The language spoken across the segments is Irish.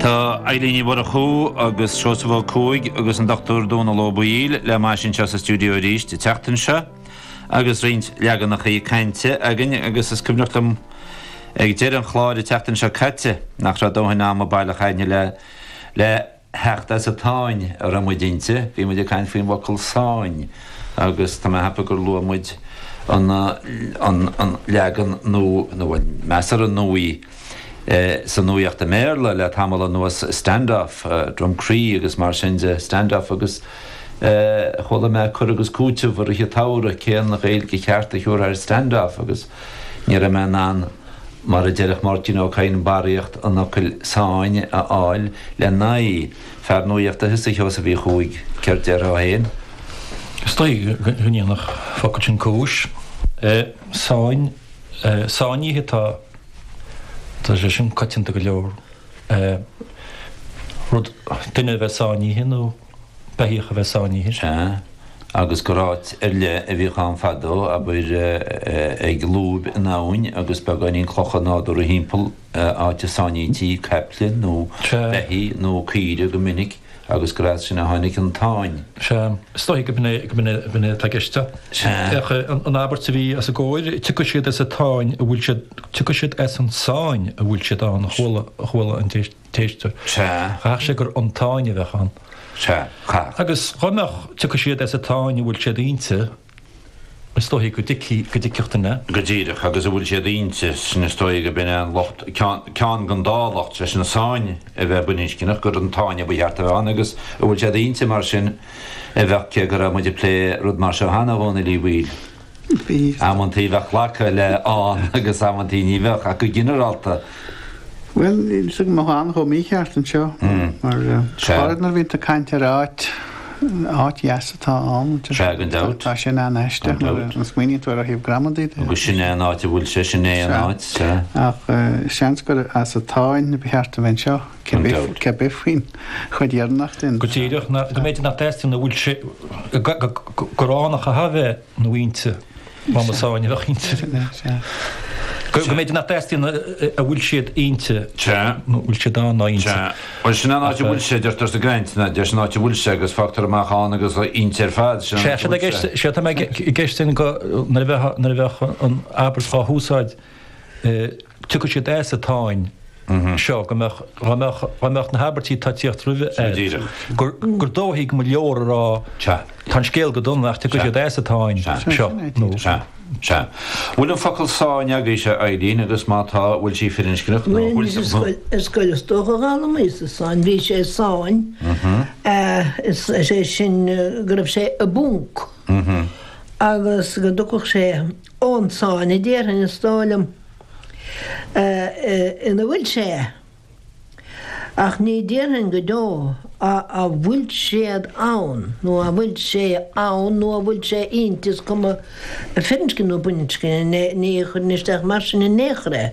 Tá Eibhlín Ní Mhurchú agus Seosamh Ó Cuaig agus an Dr Dónall Ó Baoill le m'ais anseo sa stiúideo arís an tseachtain seo agus roinnt leaganachaí cainte againn agus is cuimhneach liom ag deireadh an chláir an tseachtain seo caite nach raibh dóthain ama baileach againn le theacht as an tsáinn a raibh muid inti. Bhí muid ag caint faoin bhfocal 'sáinn' agus tá mé ag ceapadh gur luaigh muid an leagan nua, nó bhuel, measartha nua, sa nuaíocht i mBéarla le tamall anuas, stand-off, drumcree agus mar sin de, stand-off agus chuala mé cur agus cúiteamh i rith an tsamhraidh, cén Ghaeilge cheart a thiúrfá ar stand-off agus ní raibh mé in ann, mar a déarfadh Máirtín Ó Cadhain, barraíocht an fhocail sáinn a fháil le n-aghaidh. Fear nuaíochta is ea thusa a Sheosaimh Uí Chuaig, céard déarfá fhéin? Is dóigh go ndéanfadh an focal sin cúis. Sáinn. Sáinnithe atá. Tá sé sin coitianta go leor. Rud, duine a bheith sáinnithe nó beithíoch a bheith sáinnithe. Sea. Agus gur áit ar leith a bhíodh ann fadó, abair, ag lúb in abhainn agus beagáinín clocha nádúrtha timpeall, áit a sáinnítí caiple nó beithígh nó caoire go minic. agus gur as sin a tháinig an tsáinn. Sea, is dóigh gurb in é atá i gceist. Féach an abairt a bhí os ár gcomhair, Tiocfaidh siad as an tsáinn a bhfuil siad, tiocfaidh siad as an tsáinn a bhfuil siad ann, a chuala an t-éisteoir. Cheap sé gur an tsáinn a bheadh ann. Agus dhá mbeadh, Tiocfaidh siad as an tsáinn a bhfuil siad inti. Is dóichí go dtuigfidh, go dtuigfeadh duine. Go díreach agus a bhfuil siad inti, sin is dóighe gurb in é an locht, ceann den dá locht, leis an sáinn a bheith baininscneach, gur an tsáinn ba cheart a bheith ann agus a bhfuil siad inti mar sin a bheadh, cé go raibh muid ag plé rud mar seo cheana a Dhónaill Uí Bhaoill. Bhí. Amantaí bheadh glactha le ann agus amantaí ní bheadh ach go ginearálta, Bhuel, níl a fhios agam an mbeadh ann chomh mícheart anseo mar chara nuair a bhíonn tú ag caint ar áit, áit dheas atá ann, tá sin an-aisteach nuair a smaoiníonn tú air ó thaobh gramadaí de. Agus sin é an áit a bhfuil sé, sin é an áit. Ach seans gur as an tsáinn ba cheart a bheith anseo, cibé faoin chuid dheireanach sin. Go díreach, go mb'fhéidir, nach dteastaíonn a bhfuil sé, go gránach a tha bheith. inti, má ba sáinn a bheadh inti. Go mb'fhéidir nach dteastaíonn a bhfuil siad inti, nó a bhfuil siad ann ná inti. Bhuel sin an áit a bhfuil siad, deirtear sa gcaint, nach ndeirtear, sin an áit a bhfuil siad agus fágtar amach ann agus inti ar fad, sin an áit a bhfuil siad. Sea, sea, tá mé ag creistiúint go, nuair a bheadh an abairt dá húsáid, Tiocfaidh siad as an tsáinn seo go mbeadh, dá mbeadh, dá mbeadh na habairtí atá ag teacht roimhe air, gur, gur dóichí go leor a rá, Sea. tá an scéal go dona ach tiocfaidh siad as an tsáinn seo, nó. Sea, sea. Bhfuil an focal sáinn agaibhse, a Eileen, agus má tá, bhfuil sí firinscneach, nó bhfuil, bhfuil, bhfuil, bhfuil. Ar scoil is dócha a d'fhoghlaimíos-sa sáinn, bhí sé i sáinn, is, is é sin go raibh sé i bponc agus go dtiocfadh sé ón tsáinn, a déarfainn, is dóigh liom, ina bhfuil sé. Ach ní déarfainn go deo a bhfuil siad ann, nó a bhfuil sé ann, nó a bhfuil sé inti, is cuma firinscne nó baininscne, ní chuirfinn isteach mar sin in aon chor é.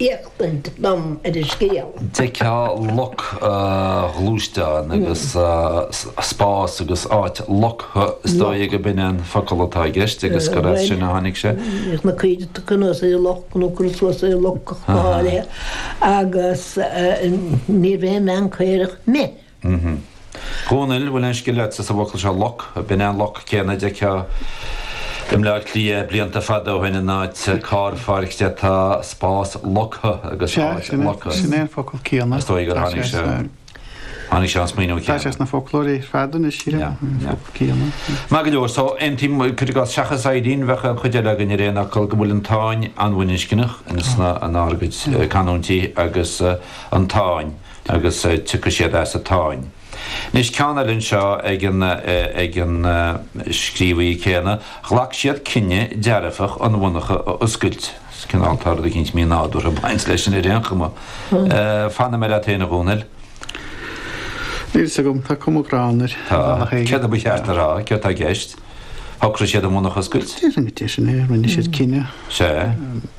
éachtaint dom ar an scéal. d'fheicfeá loc ghluaisteán agus spás agus áit loctha, is dóigh go b'in an focal atá i gceist agus gur as sin a tháinig sé. Bhíodh na caoirigh á gcur suas i loc nó á gcur suas i loc go háirithe agus níorbh aon bhean caorach mé. Mhm. Dhónaill, Bhfuil aon scil leatsa sa bhfocal seo loc? B'in an loc céanna a d'fheictheá i mBleá Cliath blianta fada ó shin in áit carrpháirce. Tá spás loctha agus Sea, áit sin é, loctha. sin é an focal céanna. Is dóigh gur Tá tháinig sé sé, sna, tháinig sé an smaoineamh tá sé céanna. sna foclóirí ar fad anois, Ciara, Yeah, an yeah. focal céanna. Maith go leor. So, aontaím cuir i gcás seachas Eileen, bheadh an chuid eile againn ar aon fhocal go bhfuil an tsáinn an-bhaininscneach in sna, an ár gcuid canúintí agus an tsáinn. agus tiocfaidh siad as an tsáinn. Anois, ceann eile anseo ag an scríobhaí céanna, 'Ghlac siad cinneadh dearfach an mhonarcha a oscailt. Is cineál, tá rud éicint mí-nádúrtha ag baint leis sin ar aon chuma. Fanfaidh mé leat féin, a Dhónaill. Níl fhios agam, tá cuma ghránna air. Tá. Céard a ba cheart a rá? Céard tá i gceist? Shocraigh siad an mhonarcha a oscailt? Déarfainn go deimhin é, rinne siad cinneadh. Sea.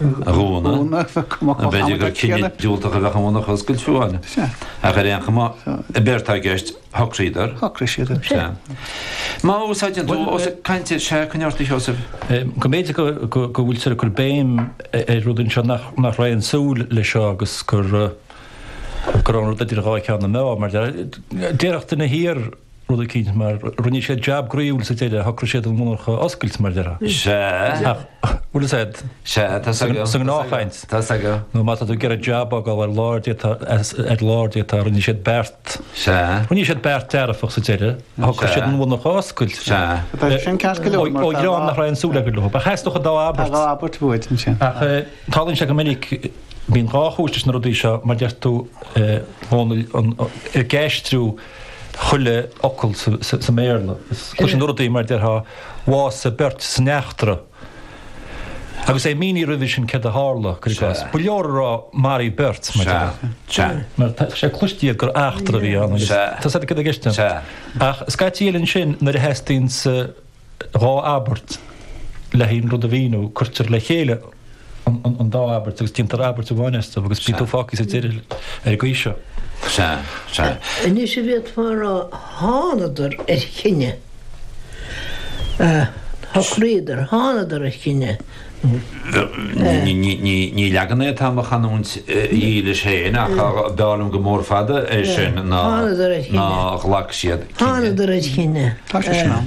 a dhúnadh. B'fhéidir gur cinneadh diúltach a bheadh ann a oscailt fiú amháin, ach ar aon chuma, an beart atá i gceist, shocraíodar. Shocraigh siad é. Sea. Má úsáideann tú os ag caint ar sea, coinne ort a Sheosaimh. B'fhéidir go bhfuiltear ag cur béim ar rud anseo nach raibh aon súil leis seo agus gur gur fhan rud idir dhá cheann na meá mar déarfadh duine thiar, rud eicínt, mar rinne siad jab groíúil sa deireadh, shocraigh siad an mhonarcha a oscailt, mar a déarfá. Sea. Ach, bhuel, sea, Sea, tá's agam. sa ngnáthchaint, Tá's agam. nó má tá tú ag iarraidh jab a fhágáil ar lár d'fhéadfá, ar lár d'fhéadfá, rinne siad beart, Sea. rinne siad beart dearfach sa deireadh, shocraigh siad an mhonarcha a oscailt. Sea. Tá sin ceart go leor, Ó, mar ó tá dhream dhá- nach raibh aon súil acu leo, ba theastódh dá tá abairt. dhá abairt bhuaid ansin. Ach eh, tarlaíonn sé go minic bíonn dhá chúis leis na rudaí seo mar deir tú eh, Dhónaill, an- an- ag aistriú chuile fhocal sa mBéarla. Cloiseann tú rudaí mar déarfá bhásaigh beirt san eachtra agus é mínithe roimhe sin céard a tharla, cuir i gcás. Ba leor a rá maraíodh beirt mar déarfá. Mar tá sé cloiste agat gur eachtra a bhí ann agus tá siad i gceist ann. Ach scaití eile ansin nuair a theastaíonn sa. dhá abairt, le haon rud a mhíniú, cuirtear le chéile an dá abairt agus déantar abairt amháin astu agus bíonn tú fágtha sa deireadh ar an gcaoi seo. Sea, sea. Anois a bhféadfá a rá, thánadar ar chinneadh. Shocraíodar, thánadar ar chinneadh. Ní leagan é atá i mo chanúint dhílis féin ach b'fhearr liom go mór fada é sin ná ghlac siad cinneadh. Thánadar ar chinneadh. Tá sé sin ann.